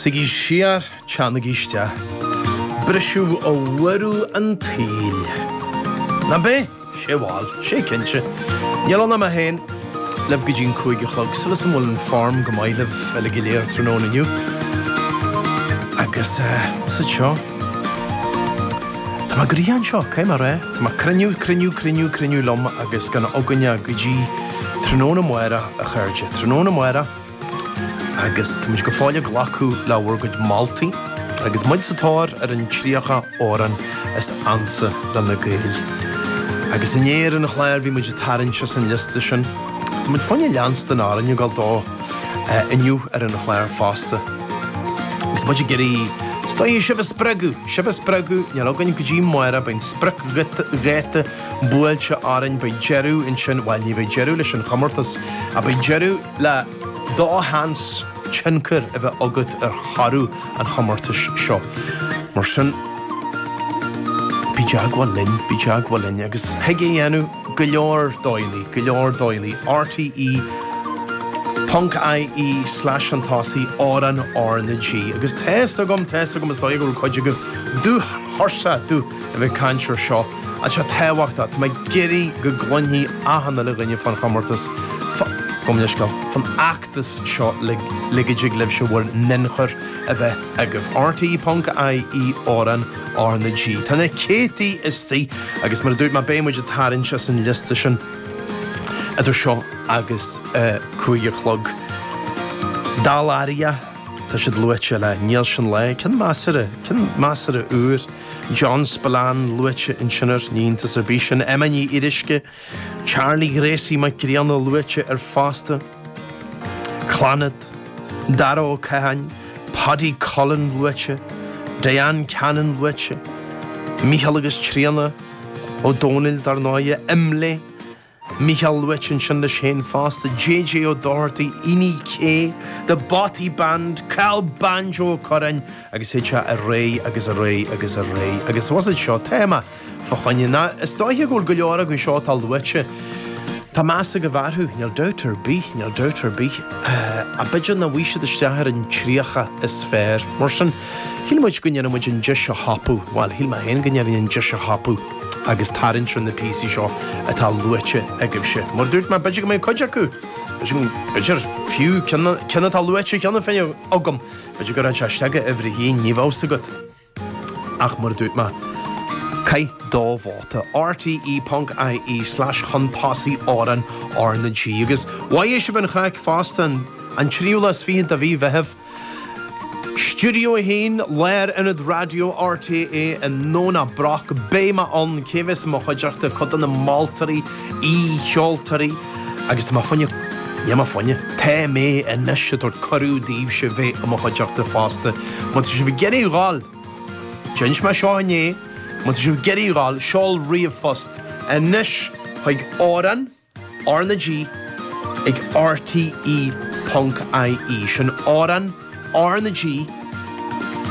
Suigí siar, teannaigí isteach. Briseadh ó bhuaireamh an tsaoil. Nab é? Sé bhuel, sé cinnte. Níl ann ach mé féin libh go dtí an cúig a chlog, tá súil agam go bhfuil an form. Go maith libh uilig go léir tráthnóna inniu. Agus é ise seo, tá mé gortha anseo, cé mar é? Tá mé cruinniú, cruinniú, cruinniú, cruinniú liom agus gan againne go dtí tráthnóna amárach, a chairde. Tráthnóna amárach. agus tá muid go fóill ag glacadh le bhur gcuid moltaí agus muid sa tóir ar an 30 amhrán is ansa leis na Gaeil. Agus inné ar an chlár bhí muid ag tarraingt as an liosta sin. Agus tá muid fá choinne leanstan de na hamhráin ag dul dó inniu ar an chlár fosta. Agus muid ag iarraidh is dóigh sibh a spreagadh, sibh a spreagadh, níl againn go dtí amárach beidh an spriocdháta buailte orainn, beidh deireadh ansin, bhuel ní bheidh deireadh leis an chomórtas, ach beidh deireadh. le do sheans tionchar a bheith agat ar thoradh an chomórtais seo. Mar sin, bí i dteagmháil linn, bí i dteagmháil linn agus thig é a dhéanamh go leor dóigheanna, go leor dóigheanna, rte. ie slash ansin Amhrán RnaG agus tá a fhios agam, tá a fhios agam, is dóigh go bhfuil cuid agaibh dubh tuirseach de a bheith ag caint ar seo. Ach tá seo tábhachtach, tá mé ag iarraidh go gcluinfidh achan uile dhuine fán chomórtas, fán chomhoscailt, fán fheachtas seo le le go dtig libhse bhur n-ionchur a bheith agaibh. RTÉ.ie Amhrán RnaG Tá na céadtaí istigh agus mar a dúirt mé beidh muid ag tarraingt as an liosta sin idir seo agus a cúig a chlog. Dá láimhe, tá siad luaite le Níl sin le, cén measartha, cén measartha uair? John Spillane luaite ansin, ní iontas ar bith sin, Emma Ní Fhíoruisce, Charlie Ghracie Mac Grianna luaite air fosta, Clannad, Dara Ó Catháin, Paddy Cullen luaite, Diane Cannon luaite, Mícheál agus Tríona, Ó Domhnaill, dar ndóighe, Imlé, Micheál luaite ansin leis féin fosta, JJ Ó Dochartaigh, Iní K, The Bothy Band, Cathal Banjo Ó Curráin, agus théid sé ar aghaidh agus ar aghaidh agus ar aghaidh agus más é seo téama fá choinne. Ná is dóiche go bhfuil go leor acu seo atá luaite, tá meas agaibh orthu, níl dabht ar bith, níl dabht ar bith, ach b'fhéidir nach mbeidh siad isteach ar an tríocha is fearr. Mar sin, shíl muid go ndéanfadh muid an deis a thapú, bhuel, shíl mé féin go ndéanfainn an deis a thapú. agus tarraingt ar na píosaí seo atá luaite agaibhse. Mar a dúirt mé, b'fhéidir go mbeidh cuid acu, b'fhéidir fiú cinn atá luaite cheana féin agam, b'fhéidir gur fhan sé istigh i uimhir a haon, ní bheadh a fhios agat ach, mar a dúirt mé, caith do vóta, rte ponc-IE slash chun tosaigh amhrán R na G. Agus mhaigh sibh an chraic fosta an tríú lá is fichead de mhí Mheithimh. Stiúideo 1, Lárionad Raidió RTÉ i nDomhnach Broc. Beidh mé ann cé bheas i mo chuideachta, cuid de na moltóirí, aoi-cheoltóirí agus tá mé faoina, níl mé faoina, tá mé anois, ag tabhairt cuireadh daoibhse bheith i mo chuideachta fosta. Má tá sibh ag iarraidh dhul? D'inis mé seo inné. Má tá sibh ag iarraidh dhul? Seol ríomhphost anois chuig amhrán. R na G ag RTÉ ponc IE. Sin amhrán R na G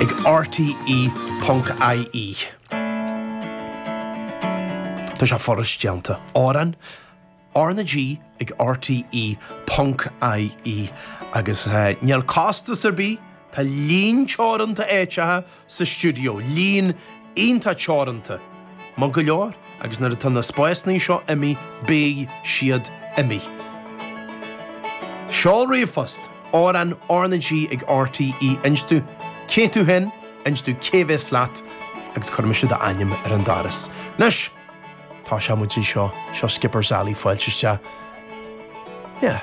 ag RTÉ ponc IE. Tá sé furast déanta. Amhrán R na G ag RTÉ ponc IE. Agus níl costas ar bith, tá líon teoranta áiteacha sa stiúideo, líon iontach teoranta, maith go leor, agus nuair atá na spásannaí seo imithe, beidh siad imithe. Seol ríomhphost, amhrán RnaG ag RTÉ inis dúinn cé tú féin, inis dúinn cé bhéas leat, agus cuirfidh mise d'ainm ar an doras. Anois, tá sé, muid anseo, seo Skipper's Alley, fáilte isteach. Yeah.